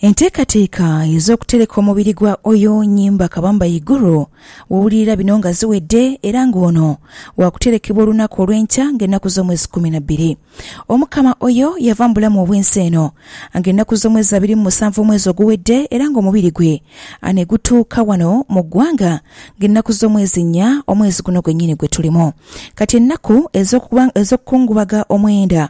Enteekateeka ez'okutereka omubiri gwa Oyo Nyimba Kabamba Iguru wowulirira bino nga ziwedde era nga ono wakuterekebwa olunaku olw'enkya nga ennaku z'omwezi kkumi na bbiri Omukama Oyo yava mu bulamu obw'ensi eno nga ennaku z'omwezi abiri mu musanvu omwezi oguwedde era nga omubiri gwe anegutuuka wano mu ggwanga nga ennaku z'omwezi nnya omwezi guno gwennyini gwetulimu kati ennaku ez'okukungubaga omwenda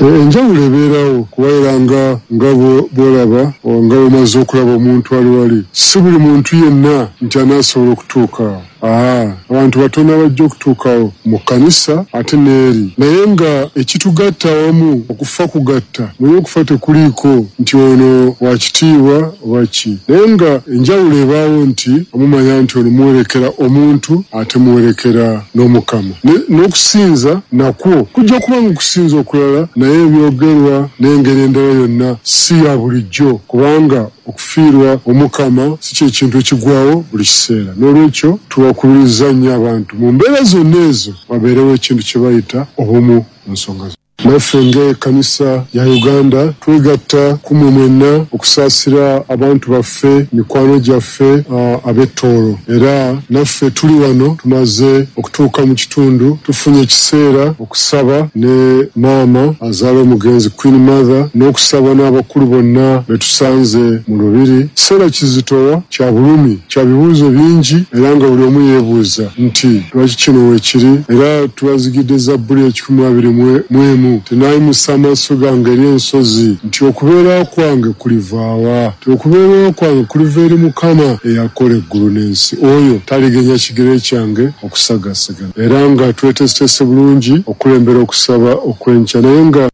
Enjawulo ebeeragho kuba era nga nga bw'olaba oba nga bw'omaze okulaba omuntu ali ghale, si buli muntu yenna nti anaasobola okutuuka agho. Aa, abantu batono abaja okutuuka agho mu kkanisa ate n'eri. Naye nga ekitugatta awamu okufa kugatta, muli okufa tekuliiko nti ono wa kitiibwa, oba ki. Naye nga enjawulo ebaagho nti amumanya nti ono muwerekera omuntu ate muwerekera n'Omukama. Ne, n'okusinza nakwo kujja kuba nga okusinza okulala, naye ebyogerwa n'engeri endala yonna si ya bulijjo, kubanga okufiirwa Omukama si kye kintu ekigwawo buli kiseera. N'olwekyo tubakubiriza nnyo abantu mu mbeera zonna ezo babeerewo ekintu kye bayita obumu mu nsonga zonna. Naffe nga ekanisa ya Uganda twegatta kumwe mwenna okusaasira abantu baffe, mikwano gyaffe ab'e Tooro. Era naffe tuli wano tumaze okutuuka mu kitundu tufunye ekiseera okusaba ne maama azaala omugenzi Queen Mother n'okusaba n'abakulu bonna betusanze mu lubiri. Kiseera kizitowa kya bulumi. Kya bibuuzo bingi era nga buli omu yeebuuza nti, Lwaki kino weekiri? Era tubazigidde Zabbuli ekikumi mu abiri mu emu nti, Naimusa amaiso gange eri ensozi, nti okubeera kwange kuliva wa? Nti okubeerayo kwange kuliva eri Mukama eyakola eggulu n'ensi, oyo talighenya kigere kyange okusagasagana. Era nga tweteeseteese bulungi okulembera okusaba okw'enkya, naye nga.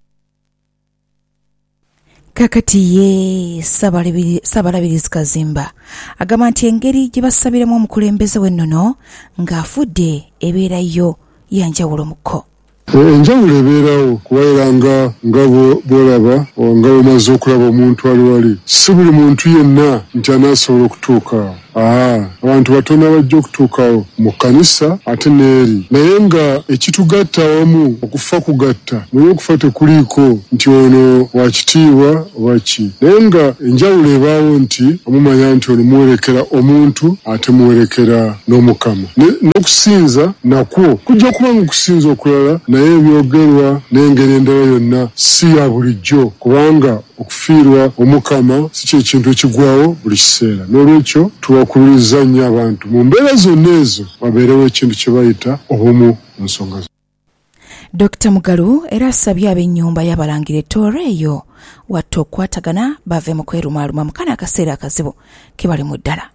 Kakati ye Ssabalabirizi Kazimba agamba nti engeri gyebasabiramu omukulembeze we nono nga afudde ebeera yo yanjawulo mu ko. Enjawulo ebeerawo kuba era nga nga bwolaba nga bwomaze okulaba omuntu ali wali, ssi buli muntu yenna nti anaasobola okutuuka awo. A Abantu batono abaja okutuuka mu kkanisa ate n'eri. Naye nga ekitugatta awamu okufa kugatta. Manya okufa tekuliiko nti ono wa kitiibwa oba ki. Naye nga enjawulo ebaawo nti omumanya nti ono muwerekera omuntu ate muwerekera n'Omukama. Ne, n'okusinza nakwo kujja kuba ng'okusinza okulala, naye ebyogerwa n'engeri endala yonna si ya bulijjo, kubanga Okufiirwa Omukama si kye kintu ekigwagho buli kiseera. N'olwekyo, tuwakululiza nnyo abantu mu mbeera zonna ezo wabeerewo ekintu kye bayita obumu mu nsonga zonna. Dokita Mugalu era asabye ab'ennyumba y'Abalangira e Tooro eyo Watta okukwatagana bave mu kwerumaaluma mu kano akaseera akazibu ke balimu ddala.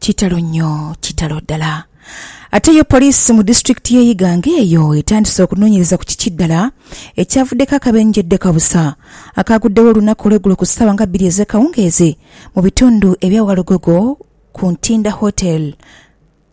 Kitalo nyo, kitalo dala. Ate yo poliisi mu disitulikiti y'e Iganga eyo etandise okunonyereza ku kiki dala ekyavudeku akabenje deka busa akagudegho olunaku olwegulo ku saawa nga biri ezekawungeezi mu bitundu ebya Walugogo ku Ntinda Hotel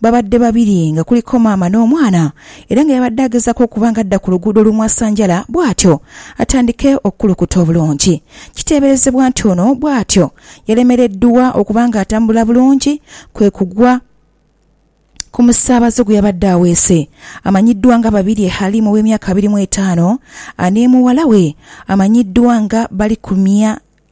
Baabadde babiri nga kuliko maama n'omwana era nga yabadde agezaako okuba nga adda ku luguudo olumwasanjala bwatyo atandike okukulukuta obulungi. Kiteeberezebwa nti ono bwatyo yalemereddwa okuba nga atambula bulungi kwe kugwa ku musaabaze gwe yabadde aweese amanyiddwa nga Babirye Halim ow'emyaka abiri mu etaano anemuwala we amanyiddwa nga Balikumya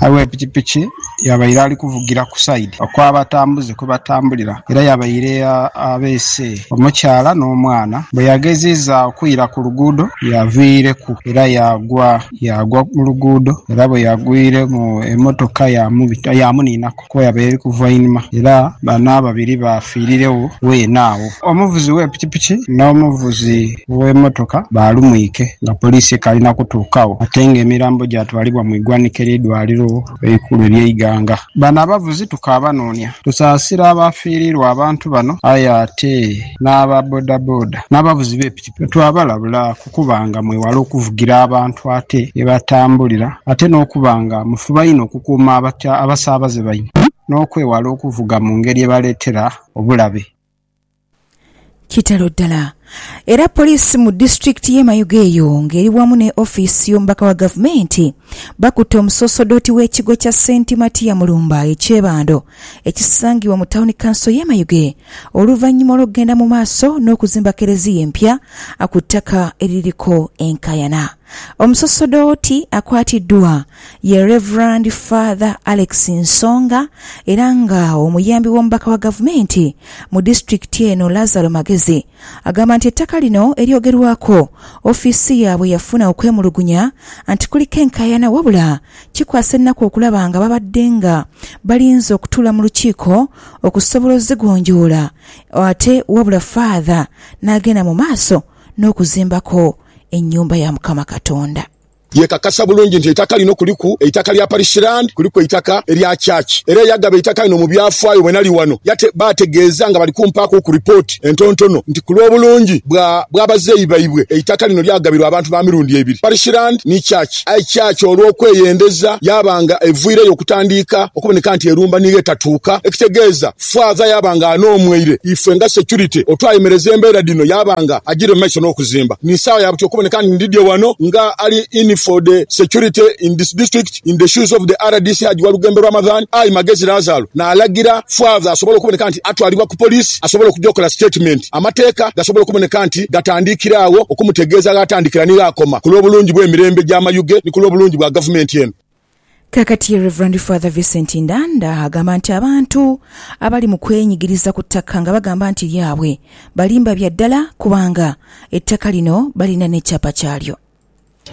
Awe pikipiki yabaire ali kuvugira ku sayidi okw'abatambuze kwe batambulira era yabaire abeese omukyala n'omwana. Bwe yageziiza okwira ku luguudo yaviireku era yaagwa. Yaagwa mu luguudo era bwe yagwire mu emotoka yaamuniinaku. Koya be likuva einhuma era bano ababiri baafiiriregho weene agho. Omuvuzi w'e pikipiki n'omuvuzi w'emotoka baalumwike nga poliisi ekaali na kutuukagho ate nga emirambo gyatwalibwa mu igwanika ery'eidwaliro eikulu erye Iganga. Bano abavuzi tukaabanoonia. Tusaasira abaafiiriirwa abantu bano aye ate n'aba bodaboda n'abavuzi be pikipiki. Twabalabula ku kuba nga mwewala okuvugira abantu ate ye batambulira ate n'okuba nga mufuba inho okukuuma abasaabaze baimwe n'okwewala okuvuga mu ngeri ebaleetera obulabe. Kitalo ddala era poliisi mu disitulikiti y'e Mayuge eyo ng'eri wamu ne ofiisi y'omubaka wa gavumenti bakutte omusosodooti w'ekigo kya Saint Matia Mulumba e Kyebando ekisangibwa mu Tawuni Kanso y'e Mayuge oluvannyuma olw'okugenda mu maaso n'okuzimba Keleziya empya ku ttaka eririko enkaayana. Omusosodooti akwatiddwa ye Rev. Father Alex Nsonga era nga omuyambi w'omubaka wa gavumenti mu disitulikiti eno Lazaro Magezi Agamba nti ettaka lino eryogerwaku, ofiisi yaabwe yafuna okwemulugunya nti kuliko enkaayana wabula kikwasa ennaku okulaba nga babadde nga balinze okutuula mu lukiiko okusobola ozigonjoola ate wabula Faadha n'agenda mu maaso n'okuzimbako ennyumba ya Mukama Katonda. Yeekakasa bulungi nti eitaka lino kuliku eitaka lya Parish Land, kuliku eitaka erya Church era eyagaba eitaka lino mu byafaayo bwe nali wano baategeeza nga bali kumpaakuku ripooti entontono nti ku lw'obulungi bw'abazeeyi baibwe eitaka lino lyagabirwa abantu ba mirundi ebiri, Parish Land ni Church aye Church olw'okweyendeza yaaba nga eviireyo okutandiika okuboneka nti erumba niigho etatuuka ekitegeeza. Faaza yaaba nga anoomweire ife nga security otwayemereza embeera dhino yaaba nga ajiire mu maiso n'okuzimba. Ni saagho ya buti okuboneka nti ndidhye wano nga ali in for the security in this district in the shoes of the rdc Hajji Walugembe Ramadhan I Magezi Lazaru naalagira Faaza asobole okuboneka nti atwalibwa ku police asobole okuja okola statement amateeka gasobole okuboneka nti gatandiikira agho okumutegeeza ghaatandikira ni ghaakoma ku lw'obulungi bw'emirembe gy'amayuge ni ku lw'obulungi bwa gavumenti eno. Kakati Rev. Father Vincent Ndanda agamba nti abantu abali mu kwenyigiriza ku ttaka nga bagamba nti lyabwe balimba bya ddala kubanga ettaka lino balina n'ekyapa kyalyo.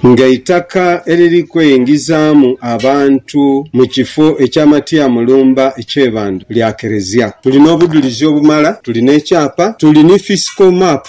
Ng'eitaka eriri kweyingizaamu abantu mu kifo ekya Matia Mulumba e Kyebando lya Kerezia, tuli n'obudhulizi obumala, tuli n'ekyapa, tuli ni fisiko map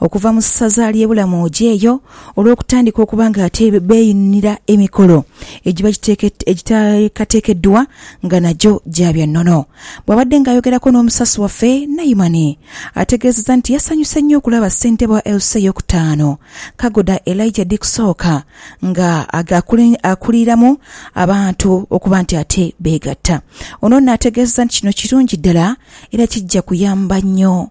okuva mu ssaza ly'e Bulamu oja eyo olw'okutandika okuba ng'ate beeyunira emikolo egiba giteekateekeddwa nga nagyo gya bya nnono. Bw'abadde ng'ayogerako n'omusasi waffe, Naimani ategeezezza nti yasanyuse nnyo okulaba ssentebe wa LC ey'okutaano, Kagoda Elijah Dikusooka nga akuliramu abantu okuba nti ate beegatta. Ono nno ategeezezza nti kino kirungi ddala era kijja kuyamba nnyo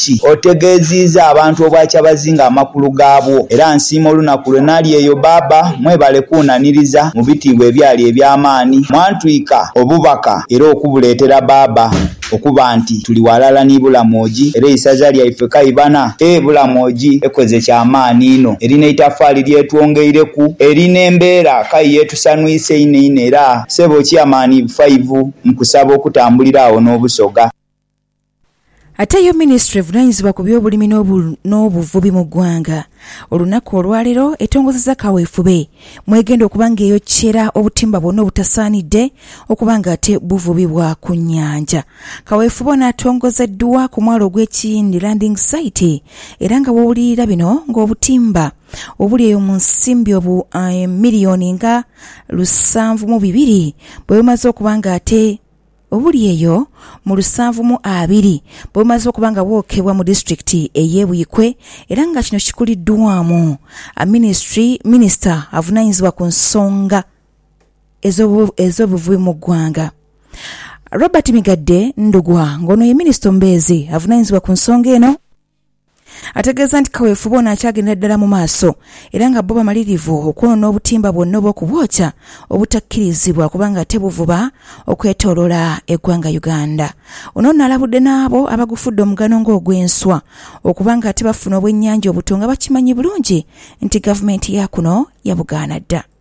ki? Otegeziiza abantu obwakyabazinga amakulu gabwo era nsiima olunaku lwe nali eyo Baaba mwebale kunaniriza mu bitiibwa ebyali ebyamaani mwantwika obubaka era okubuletera Baaba okuba nti tuli walala ni Bulamwoji era eisaza lyaife kaibana e Bulamwoji ekoze kyamaani inho eri neitafaali lyetwongeireku eri nembeera kayi yetusanwisa inho inho era Sebo Chairman iv five nkusaba okutambulira agho nobusoga Ate yo minisitule evunanyizibwa ku by'obulimi n'obuvubi mu ggwanga olunaku olwaleero etongozezza kaweefube mwegenda okuba nga eyokyera obutimba bwonna obutasaanidde okuba nga ate buvubibwa ku nyanja. Kaweefube ono atongozeddwa ku mwalo ogw'e Kiyindi Landing Site era nga wowulirira bino nga obutimba obuli eyo mu nsimbi obu million nga lusanvu mu bibiri bwebumaze okuba nga ate Obuli eyo mu lusanvu mu abiri bwe bumaze okuba nga bwokebwa mu disitulikiti ey'e Buikwe era nga kino kikuliddwaamu minisitiri minisita avunaanyizibwa ku nsonga ez'obuvubi mu ggwanga, Robert Migadde Ndugwa ng'ono ye minisita omubeezi avunaanyizibwa ku nsonga eno. Ategeeza nti kaweefube ono akyagendera ddala mu maaso era nga bbo bamalirivu okwonoona obutimba bwonna obw'okubwokya obutakkirizibwa kubanga ate buvuba okwetoloola eggwanga Uganda. Ono nno alabudde n'abo abagufudde omugano ng'ogw'enswa okuba nga ate bafuna obwennyanja obuto nga bakimanyi bulungi nti gavumenti yaakuno yabugaana dda.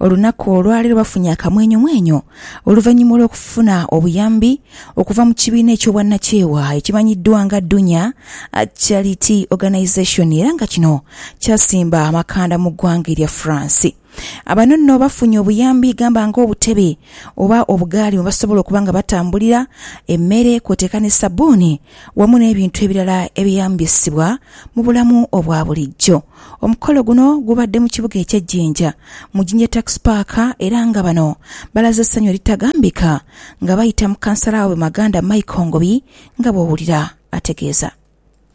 Olunaku olwali lubafunye akamwenyumwenyu oluvannyuma olw'okufuna obuyambi okuva mu kibiina eky'obwannakyewa ekimanyiddwa nga Dunya Charity Organisation era nga kino kyasimba amakanda mu ggwanga erya France. Bano nno bafunye obuyambi gamba ng'obutebe oba obugaali mwe basobola okuba nga batambulira, emmere kwoteeka ne sabbuuni wamu n'ebintu ebirala ebyeyambisibwa mu bulamu obwa bulijjo. Omukolo guno gubadde mu kibuga ekye Jinja mu Jinja Tax Park era nga bano balaze essanyu eritagambika nga bayita mu kansala waabwe Maganda Michael Ngobi nga bwowulira ategeeza.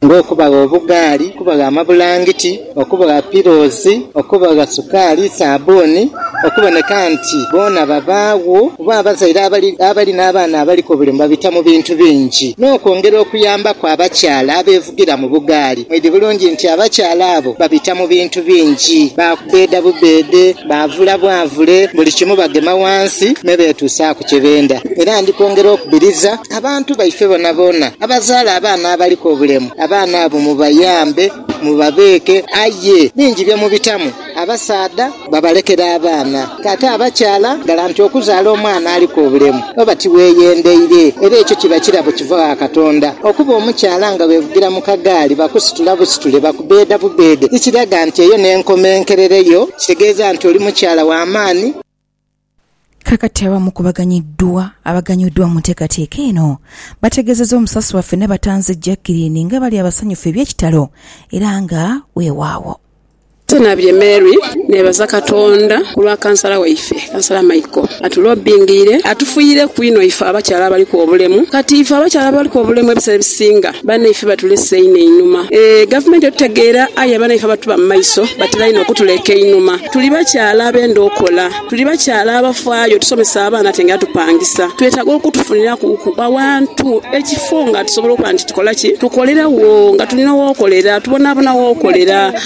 ng'okubagha obugaali, okubagha amabulangiti, okubagha pilozi, okubagha sukaali, saabbuuni, okuboneka nti boona babaagho kuba abazaire abali abali n'abaana abaliku obulemu babita mu bintu bingi n'okwongera okuyambaku abakyala abe. okuvugira mu bugaali. Mwidhi bulungi nti abakyala abo babita mu bintu bingi, baakubbeeda bubbeede, baavula bwavule, buli kimu bagema wansi me beetuusaaku kye benda. Era ndi kwongera okubiriza abantu baife boonaboona abazaala abaana abaliku obulemu, abaana abo mubayambe, mubabeeke. Aye bingi bye mubitamu. Abasaadha babalekera abaana. Ate abakyala ghala nti okuzaala omwana aliku obulemu oba tiweeyendeire, era ekyo kiba kirabo kiva gha Katonda. Okuba omukyala nga weevugira mu kagaali bakusitula busitule, bakubbeeda bubbeede, tikiraga nti eyo n'enkomenkerero yo. Kitegeeza nti oli mukyala wa maani. Kakati abamu ku baganyiddwa abaganyuddwa mu nteekateeka eno bategeezezza omusasi waffe Nabatanzi Jackeline nga bali abasanyufu eby'ekitalo era nga weewaawo. Tinabye Mary nebaza Katonda ku lwa kansala waife, Kansala Michael atulobbingiire atufuyireku inho ife abakyala abaliku obulemu. Kati ife abakyala abaliku obulemu ebiseera ebisinga Banaife batulese inho einhuma. Eeh gavumenti otutegeera aye abanaife abatuba mu maiso batera inho okutuleka einhuma. Tuli bakyala abenda okola, tuli bakyala abafaayo, tusomesa abaana ate nga tupangisa. Twetaaga okutufunirakuku awantu, ekifo nga tusobola okuba nti tukola ki? Tukolera wo nga tulina wokolera, tubonabona wokolera.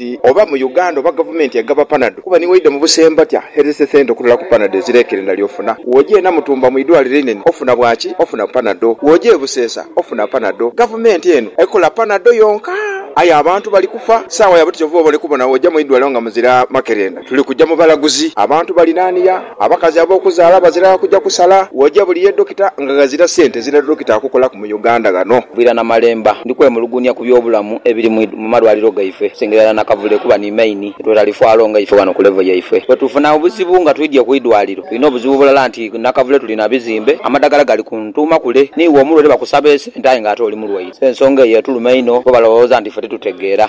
nti oba mu Uganda oba gavumenti egaba panado kuba ni waidha mu busembatya herese sente okutola ku panado ezirekerenda lyofuna woja e Namutumba mu idwaliro einene ofuna bwaki ofuna panado woja e Busesa ofuna panado gavumenti eno ekola panado yonka aye abantu bali kufa saawa yabwe ti kyova obone kubona woja mu idwaliro nga muzira makerenda tuli kuja mu balaguzi abantu balinania Abakazi abokuzaala bazira kuja kusala woja buli ye Dokita nga ghazira sente zira Dokita akukolaku mu Uganda ghano. Bwira Namalemba, Ndi kwemulugunya ku by'obulamu ebiri mu malwaliro gaife okusinga irala nakavule kuba ni main yetwetalifaalo nga ife ghano ku level yaife. Bwetufuna obuzibu nga twidhye ku idwaliro tulina obuzibu bulala nti nakavule tuli na bizimbe, amadagala gali ku ntuuma kule, niiwe omulwaire bakusaba esente aye nga ate oli mulwaire. So ensonga eyo etuluma inho kuba balowooza nti ife titutegeera.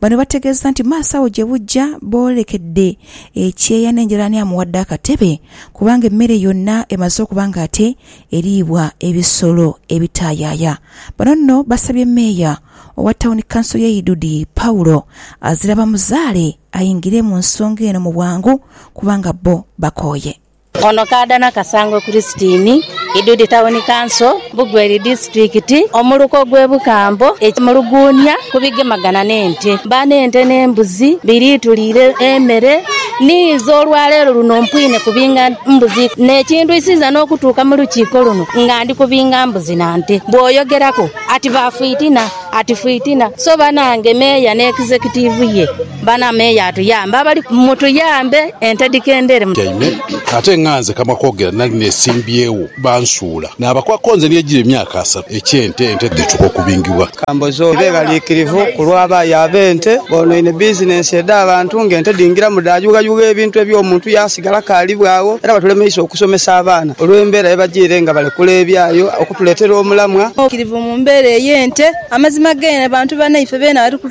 Bano bategeezezza nti maaso agho gye bujja boolekedde ekyeya n'enjeraaniamu wadde akatebe kubanga emmere yonna emaze okuba ng'ate eriibwa ebisolo ebitaayaaya. Bano nno basabye Meeya owa Tawuni Kanso y'e Idudi, Paulo Azirabamuzaale ayingire mu nsonga eno mu bwangu kubanga bbo bakooye. Ono kaadha na Kasangwe Christine, Idudi Tawuni Kanso, Bugweri Disitulikiti, Omuluka ogw'e Bukambo e Muluguunia ku bigemagana n'ente. Mba n'ente n'embuzi biri tuliire emere niiza olwaleero luno mpwine kubinga mbuzi n'ekindwisiza n'okutuuka mu lukiiko luno nga ndi kubinga mbuzi na nte. Bw'oyogeraku ati ba fwitina ati fwitina so banange Meeya n'Executive ye. Bana meeya atuyambe abali ku. Mutuyambe ente dhikendere. Tyaime ate nga nze kamwa kogera nali nesimbyewo bansuula nabakwako nze niye jira emyaka asatu ekyente ente dhituka okubingibwa. Kambozoyi beeraliikirivu ku lwa baayi ab'ente boonoine bizinensi edh'abantu ng'ente dhingiramu dhaayughayugha ebintu eby'omuntu yaasigala kaalibwa agho era batulemeisa okusomesa abaana olw'embeera ye bajiire nga balekula ebyayo okutuleetera omulamwa. Kirivu mu mbeera ey'ente. Amazima g'eno bantu banaife beena bali ku.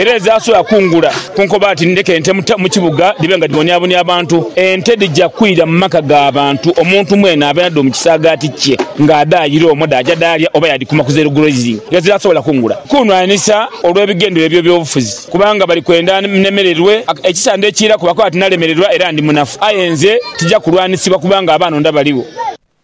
era ezaasobola kungula ku nkoba nti ndeka ente mu kibuga dhibe nga dhibonyabonya abantu, ente dhija kwira mu maka ga bantu, omuntu mwene abe nadho mu kisaagaati kye ng'adhaayira omwo dhaaja dhaalya oba yaadhikuuma ku zeeru grazing nga eziraasobola kungula. Kunhwanisa olw'ebigendererwa eby'ebyobufuzi kubanga bali kwenda nnemererwe ekisande ekiiraku bakoba bati nalemererwa era ndi munafu. Aye nze tija kulwanisibwa kubanga abaanonda baligho.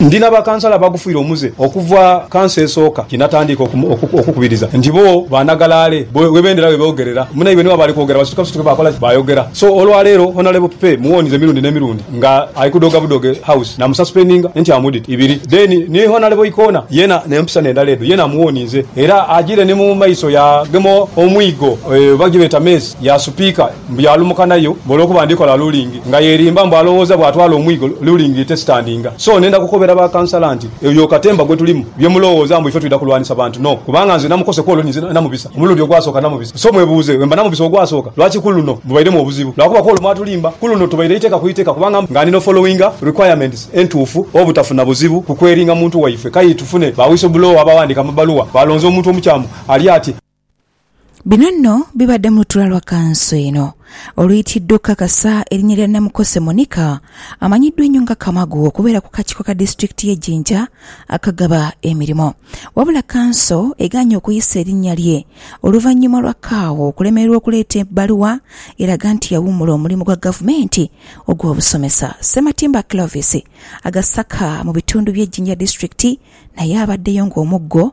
Ndi na bakansala abagufiire omuze okuva kansa esooka ye natandiika okukubiriza nti bo banagalaale webendera weboogerera munaibwe ni bwaba ali kwogera basituka busituke bakola ki? Bayogera. So olwaleero Honourable Pipee muwoonize emirundi n'emirundi nga ali kudhoga budoge House namususpendinga entiamudit ibiri then ni Honourable Ikoona yena n'empisa n'endala edho yena amuwoonize era agire ni mu maiso yaagema omwigo oba gyebeeta meezi ya Supiika Mbu yaalumuka nayo mbu olwokuba ndi kola lulingi nga yeerimba mbu alowooza bw'atwala omwigo lulingi etesitandinga. So nenda kukobera ba kansala nti oyo katemba gwe tulimu bye mulowooza mbu ife twidha kulwanisa bantu no kubanga nze namukose ku olwo ninze namubisa omulundi ogwasooka namubisa. So mwebuuze bwe mba namubisa ogwasooka lwaki ku luno mubairemu obuzibu lwakuba ku olwo mwatulimba ku luno tubaire iteeka ku iteeka kubanga nga ndi n'ofollowinga requirements entuufu obutafuna buzibu ku kweringa muntu waife. Kayi tufune ba whistleblower abawandiika amabaluwa baalonze omuntu omukyamu ali ati. Bino nno bibadde mu lutuula lwa kanso eno oluyitiidwa okukakasa erinnya lya Namukose Monica amanyiddwa ennyo nga Kamagu okubeera ku kakiiko ka disitulikiti y'e Jinja akagaba emirimu wabula kanso egaanye okuyisa erinnya lye oluvannyuma lwa Kaawa okulemererwa okuleeta ebbaluwa eraga nti yawummula omulimu gwa gavumenti ogw'obusomesa. Ssematimba Clovis agasaka mu bitundu bye Jinja disitulikiti naye abaddeyo ng'omuggo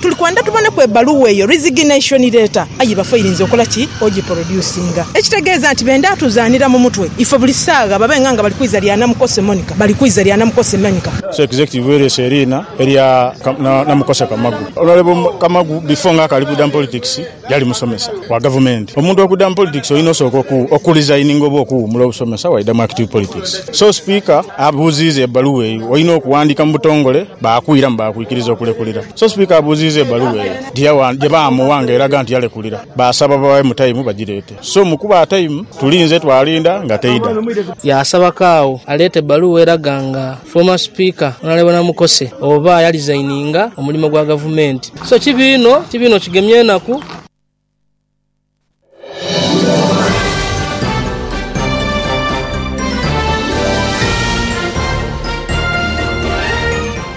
Tuli kwendha tuboneku ebbaluwa eyo, resignation letter, aye bafe oyirinza okola ki? Ogiproducinga. Ekitegeeza nti bendha tuzaanira mu mutwe ife buli saagha babe nga nga bali kwiza lya Namukose Monica, bali kwiza lya Namukose Monica. So executive wereese eriina erya Namukose Kamagu. Honourable Kamagu before nga akali kwidha mu politics, Yali musomesa wa gavumenti. Omuntu okudda mu politics olina osooka oku resigninga oba okuwuumula obusomesa waidha mu active politics. So Sipiika abuuziiza ebaluwa eyo olina okuwandiika mu butongole baakuiramu baakwikiriza okulekulira. So Sipiika abuuziiza ebaluwa eyo gye baamuwa nga eraga nti yalekulira baasaba babaemu time bagireete. So mu kubawa time tulinze twalinda nga teidha. Yaasaba Kaawo aleete ebbaluwa eraga nga Former Speaker Honourable Namukose oba yalizayininga omulimo gwa Gavumenti. So kibi inho, kibi inho kigemya enaku.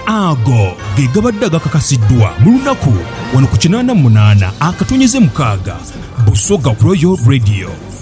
Ago ge gabadde agakakasiddwa mu lunaku wano ku kinaana mu munaana akatonyeze mukaaga Busoga Royal Radio.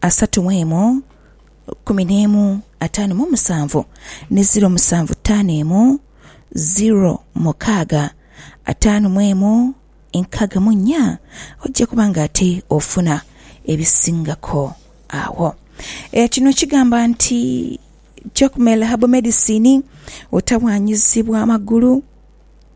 asatu mu emu, kumi n'emu, ataanu mu musanvu, ni ziro musanvu ttaano emu, ziro mukaaga, ataanu mu emu, nkaaga mu nnya, oja kuba nga ate ofuna ebisingako agho. Kino kigamba nti Jacmel Herbal Medicine, otawaanyizibwa magulu.